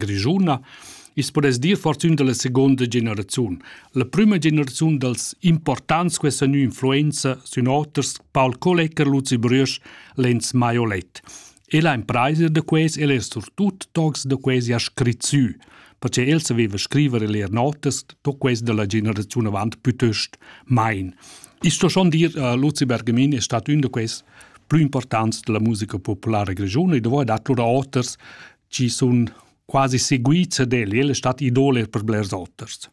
grischuna, i's podess dir fortün da la segonda generaziun, la prüma generaziun dals importants questa nua influenza sün oters Paul Kollecker, Luzi Brüsch, Lenz Maiolet. El ha impraisa da quais, el es surtut tocs da quesi ha scrit sü, perche el saveva scriver e leer notas, to quais da la generaziun avant pütöst mein. Ich sto schon dir, uh, Luzi Bergamin è stato un da questi più importanti della musica popolare grigiona e dovevo dar loro oters chi sun quasi seguits ed el stat idole per blers oters.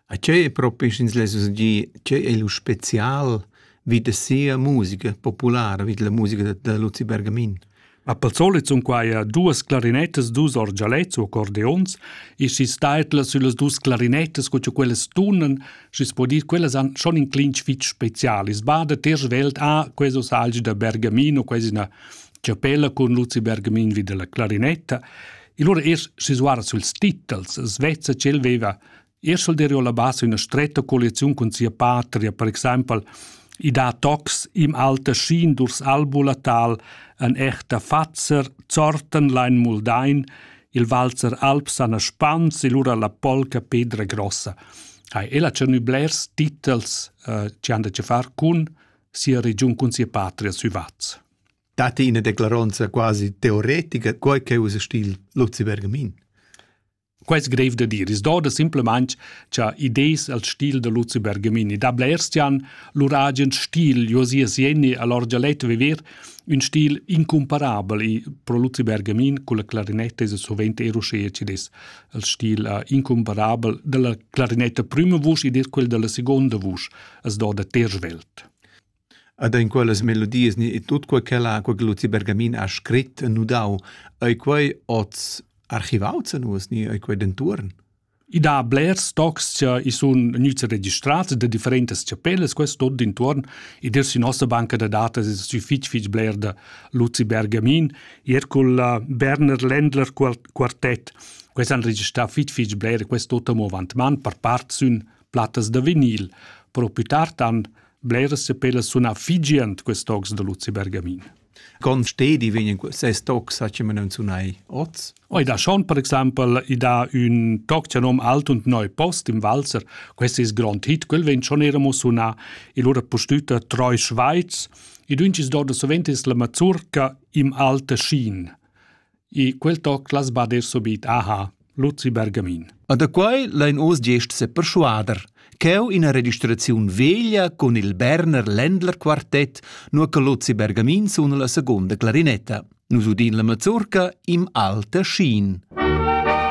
A che è propi sch'ins less dir che è lu special vid da sia musica populara, vid la musica da, da Luzi Bergamin? Ma pel solit sun quai duas clarinettas, dus orgialets o accordeons e schi staitlas süllas dus clarinettas co che quellas tunan, schi's po dir quellas han schon in clinch fich specialis. Bada ter svelt a queso salgi da Bergamin o quasi na chapella cun Luzi Bergamin vi della clarinetta, e lura es sisuara suls titels, svezza ch'el veva er solderio la base una stretta collezione con sia patria, per example, i dà tocs im alter schien durs albulatal an echter Fatzer, Zorten lein Muldain, il Walzer Alp sana Spans e lura la polca Pedra Grossa. Hai ella tschernü blers titels eh, che han da che far cun sia regiun, cun sia patria sü Vaz. dat ina declaronza quasi teoretica, quai che usa stil Luzi Bergamin. Quai è grev da dire. Es doda simplemente cha idees al stil da Luzi Bergamini. Da blers tian lur agen stil, Josia Sieni, all'orgia letto viver, un stil incomparabel e pro Luzi Bergamin con la clarinetta es sovente eroschea ci des al stil uh, incomparabel della clarinetta prima vusch e des quel della seconda vusch, es doda tersch welt. Ed en quellas melodias ni e tut quei ch'ella ha, quei che Luzi Bergamin ha scrit e nudau, ei quei oz archivaus a nus ni ei quei dentuorn? I dà blers tocs che i sun gnüts registrats da differentas chapellas, quest tot d'intuorn. I dir sü nossa banca da datas es sü fich fich bler da Luzi Bergamin. Ir cul uh, Berner Ländler quartett, quels han registrà fich fich bler, quest tot amo avant man, per part sün plattas da vinil. Però più tard han Bleras sepelas sun affigient quest tocs da Luzi Bergamin. Con stedi vegnan ses tocs a che non sunai oz? Oi da schon per exaimpel i da ün toc che nom Alt und Neu Post im Walzer. Quest ist grond hit, quel vegn schon era mo sunà il ora postüta Treu Schweiz. I duncis do da sovent es la mazurca im Alte Schien. I quel toc las bader subit aha, Luzi Bergamin. A da quai lain oz gest seperschuader, ch'eu ina registraziun veglia cun il Berner Ländler Quartett, nur che Luzi Bergamin suna la seconda clarinetta. Nus udin la mazurca im alter Schien.